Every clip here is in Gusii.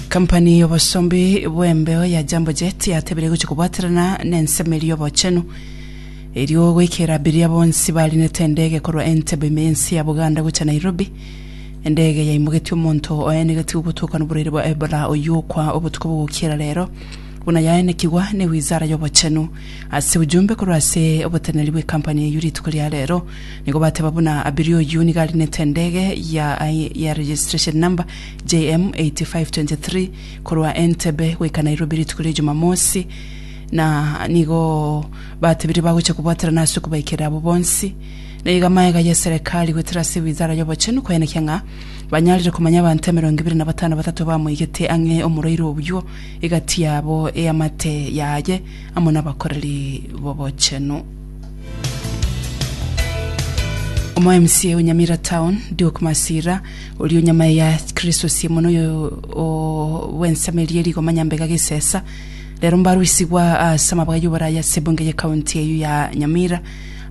Kampani y'obosombi bw'embeo ya Jambo Jet yatebirie gochia kobwaterana nensemo eria y'obochenu erio goikera abiria bonsi bariinete endege korwa Entebbe ime y'ense ya Buganda gochia Nairobi. Endege yaimogetie omonto oenegetigwe gotoka noborwaire bwa Ebola oyio okwa obotuko bogokiera rero buna yaenekigwa ne wizara y'obochenu. Ase ujumbe korwa ase oboteneneri bw'ekampani eyio rituko ria rero, Nigo bateba buna Abiri oyio nigo arinete endege ya registration number JM 8523 korwa Entebbe goika Nairobi rituko ria Jumamosi na nigo batebire bagocha kobwaterana ase okobaikera abwo bonsi. Na iga magega ya eserekari goetera ase Wizara ya Obochenu koyanekia ng'a banyarire komanya abanto emerongo ebere na batano batato bamoigete ang'e omorwaire oyio egati yabo eamate yaye amo nabakoreri b'obochenu. Omo mca o Nyamira Town, Duke Masira, oria o nyamae ya Kristo sie mono oyo o bw'ensemo eria eye rigoma nyambega gesesa, rero mbarusigwa ase amabga y'oboraya ase ebunge y'ecounty eyio ya Nyamira.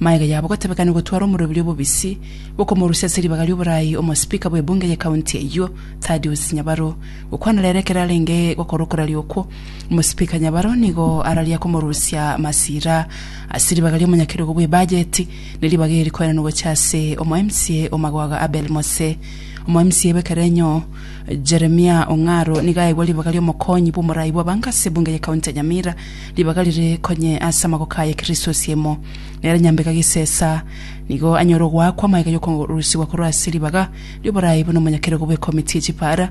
Magega yabo gotebekani gotwara omoruoberi obobisi bw'okomorusia ase ribaga ri'oboraai omospeaker bw'ebunge y'ecounty eyio, Thaddeus Nyabaro, gokwana rere ekero arenge gokora okoraria okwo. Omosipika nyabaro nigo araria komorusia masira ase ribaga ri'omonyakerogo bw'ebajeti, ne ribaga eri rikoenanwa gocha ase omoMCA o Magwaga Abel Mose. OmoMCA bw'ekerenyo Jeremia Ong'aro nigo aegwa ribaga ri'omokonyi bw'omorai bw'abanka ase ebunge ye county ya Nyamira, ribaga rire konye ase amagoko aye Kristo Osiemo. Nere Nyambega Gisesa nigo anyore ogoakwa amaiga y'okorusigwa korwa ase ribaga ri'oborai buna omonyakerogo bw'ekomiti ye chipaara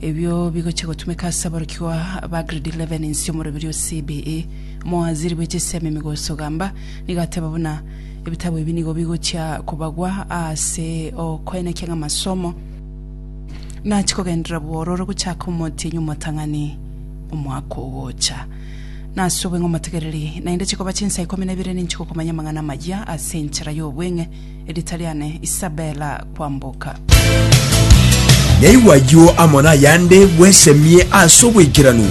Ebio bigochia gotumeka ase aborokigwa ba Grade 11 inse omorobiri o CBE, omowaziri bwe chisemi Migos Ogamba, nigo ateba buna ebitabu ebi nigo bigochia kobagwa ase okoenekia ng'a amasomo nachia kogenderera bwororo gochaka omotienyi omotang'ani omwaka ogocha. Nase obong'e omotegereri, naende chikoba chinsa ikomi na ibere ninchigokomanya amang'ana amayia ase enchera y'obweng'e, Erita riane Isabella Kwamboka. Naigwa ayio amo nayande bwesemie ase obwekeranu.